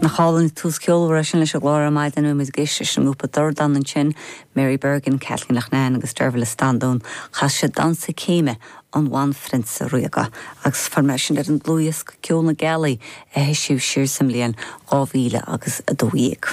Nach álainn an tús ceolmhar é sin leis an gclár ar maidin. Bhí muid ag éisteacht leis an ngrúpa Dordán ansin, Mary Bergin, Kathleen Loughnane agus Dearbhaill Standún. Chas siad Damhsa Céime an Bhanphrionsa Ríoga agus fuair mé é sin ar an dlúthdhiosca Ceol na Gealaí a heisíodh siar sa mbliain 2000 agus a dó dhéag.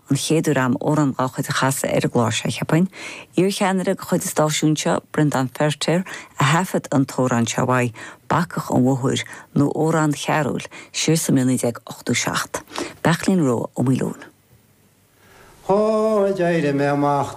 an chéad uair agam amhrán dá chuid a chasadh ar an gclár seo, cheapfainn. Iarcheannaire de chuid an stáisiúin seo, Breandán Feiritéar, a thaifead an t-amhrán seo uaidh, 'Bacach an Mhóthair', nó 'Amhrán Chearúil', siar sa mbliain 1987. Beairtlín Rua Ó Maoileoin. Ó, d'éirigh mé amach.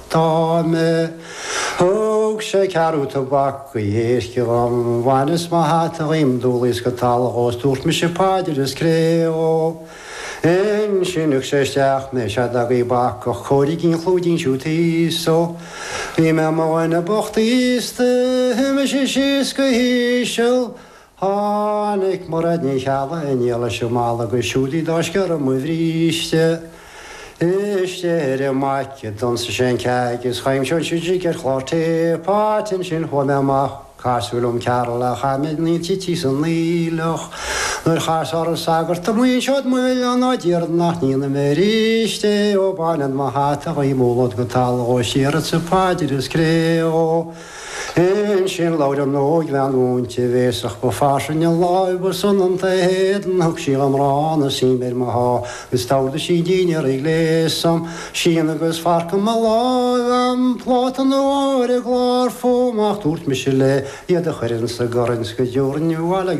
Tá mé. Thug sé ceathrú tobac go héasci dhom, bhaineas mo hata dhíom, d'umhlaíos go talamh dhó is dúirt mise paidir is cré dhó. Ansin lig sé isteach mé, seod agaibh bacach, cóirígí an chlúidín siúd thíos dó. Bhí mé i mo dhuine bocht aosta, shuigh mise síos go híseal, Tháinig Mairéad Ní Cheallaigh, iníon leis an Máilleach, agus siúd í dá scéal ar mo bhríste istigh ar an maidhc. D'ionsaigh sé an ceaig is choimse an sidríc ar chlár téipeáilte. Ansin chuaigh mé amach, casadh liom Cearúl a chaith mé na tití san aoileach. Nuair chas orm an sagart amuigh anseo ag mo bhéal ná déarfad nach ndéanfaidh mé aríst é, ó bainfead mo hata dhíom umhlód go talamh dhó is déarfadsa paidir is cré dhó. Ansin labhair an óigbhean mhúinte bhéasach ba fairsinge láimh, ba soineanta a héadan, thug sí dhom arán is im ar mo sháith, is d'ordaigh sí dinnéar a ghléasadh, scian agus forc i mo láimh agam, pláta an óir ar an gclár fúm, ach dúirt mise léi iad a chur insa gcorn 's go dtabharfainn abhaile iad.